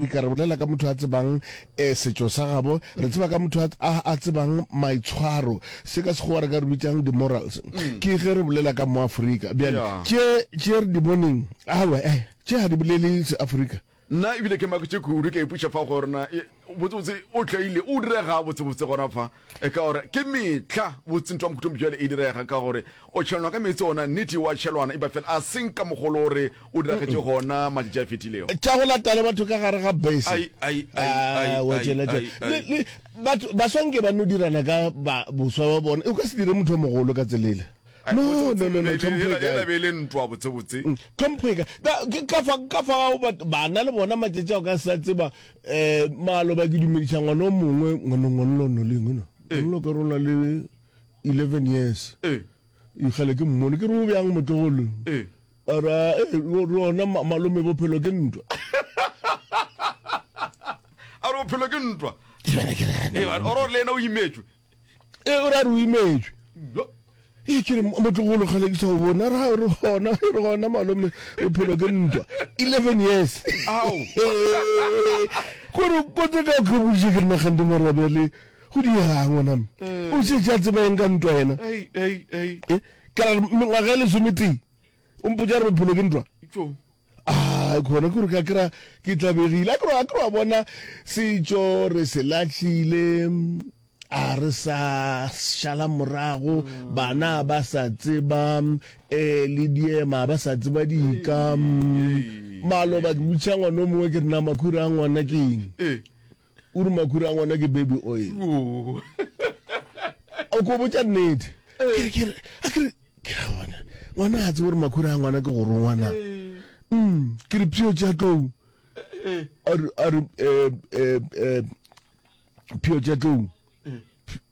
E ka re bolela ka motho a tsebang eh, setšo sa gabo. Re tseba ka motho a, a tsebang maitshwaro. Se ka Sekgowa re ka re bitsang di-morals. Ke ge re bolela ka Moafrika. Bjale, Yeah. tše, tše re di boneng, aowa, eh, tše ga di bolele Seafrika. Nna ebile ke maketše kudu, ke a ipuša fa go rena, e, botsebotse o tlaile, o direga botsebotse gona fa. E ka gore ke mehla botse ntwa mokhutlong bjale e direga ka gore o tšhelwana ka meetse ona nnete wa tšhelwana epa fela a seng ka mogolo o re o diragetše gona matšatši a fetilego. Tša go lata le batho ka gare ga bese. Ai, ai, ai, ai, Ah, wa ai, tšela tše. ai, ai. Le, le, batho, baswa nke ba no dirana ka ba, boswa ba bona. E, o ka se dire motho o mogolo ka tselele. Ai, No, botse, no, botse, no, no, le- tlhompho e le- kae? ela be e le ntwa botsebotse. Tlhompho e kae? Ka, ke ka fa, ka fa o bat, bana le bona matšatši a o ka se sa tseba Eh, maloba ke dumediša ngwana o mongwe ngwana ngwanlo no lengwe no eh. ngwanlo ka rona le 11 years eh. ikgale ke mmone ke re o bjang motlogolo eh. ara eh, rona malome bophelo ke ntwa a re bophelo ke ntwa ore le ena o imetswe e o ra re o imetšwe e ke re motlogolo kgale ke sa o bona ra re gona re gona malome bophelo ke ntwa eleven years gore kotse ka ke boditše ke re nagante mara bjale go diega ngwaname o se tša tseba eng ka ntwa yena eh, ka re mengwaga e lesometee O mpotša re bophelo ke ntwa. Tšo. Ah, khona kore ka kra ke tlabegile. A kro a kro a bona setšo re se lahlile. A re sa šala morago mm. bana ba sa tseba eh le diema ba sa tseba dika. Maloba ke butša ngwana o mongwe ke rena makhura a ngwana ke eng. Eh. O re makhura a ngwana ke baby oil. O ko botša nnete. Ke ke a ke ke a bona. Ngwana a tsebo re makhura a ngwana ke go rongwana. Mm, ke re pio tša tlou. A re a re eh eh eh pio tša tlou.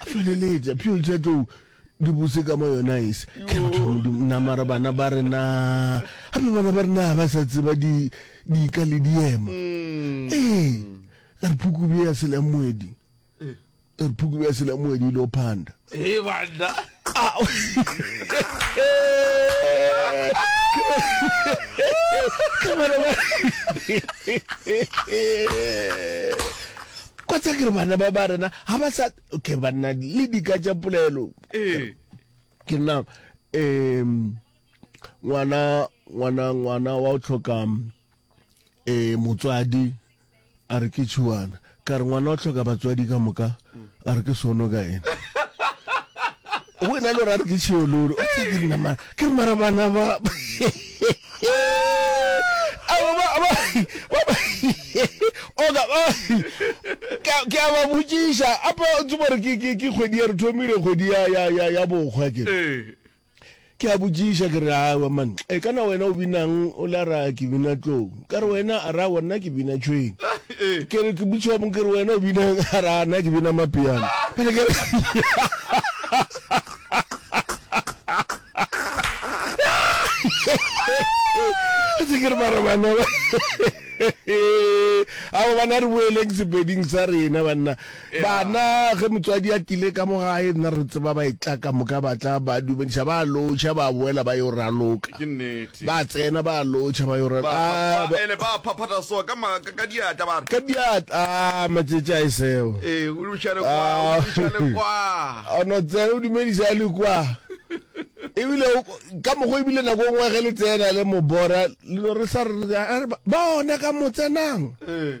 a feleletša pheo tša tlou di bose ka mo yona ese ke batho ba modimo nna mara bana ba re na gape bana ba re na ba sa tseba di di ka le diema mm. ee re phukubi ya sela moedi re phukubi ya sela moedi lo panda ee bana kwa tsa kere bana ba ba rena ga ba sa okay banna le dika tša polelo ee. ke nna um ngwana ngwana ngwana wa o tlhoka um motswadi A re ke tšhiwana. Ka re ngwana o hloka batswadi ka moka. A re ke sono ka ena. Go ena le gore a re ke tšhiololo. Ke re mara bana ba. Oka ba. Ke a ba botšiša. Apa o tsebo gore ke kgwedi ya re thomile kgwedi ya bokgwa ke. Ke a botšiša ke re aowa man e ka na wena o binang o le a ra ke bina tlou ka re wena a ra wa nna ke bina tšhweng ke re ke botšiwa mo ke re wena o binang a ra nna ke bina mapiano pele ke re tse ke re mara bana ba ao bana re boeleng sepeding sa rena banna Bana, ge motswadi a tile ka mo gae, nna re tseba ba etla ka moka, ba tla, ba dumediša, ba lotšha, ba boela ba yo raloka. Ba tsena, ba lotšha, ba yo raloka. A, ba. Ele ba phaphata so ka ma, ka, ka diatla, ba re. Ka diatla, a, matšetši a e seo. Ee, o dumediša le kwa, o dumediša le kwa. O no tsena, o dumediša le kwa. Ebile, o, ka mokgwa, ebile nako e nngwe ge le tsena le mobora, le no re sa re, a re, ba, ba ona ka mo tsenang. Ee.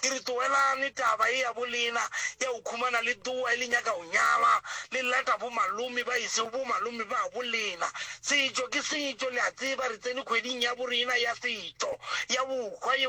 Ke re tlogelane taba ye ya bolena ya go khumana le tloa e le nyaka go nyala, le lata bo malome ba e sego bo malome ba bolena. Setšo ke setšo, le a tseba re tsene khweding ya borena ya setšo, ya bohwa ye.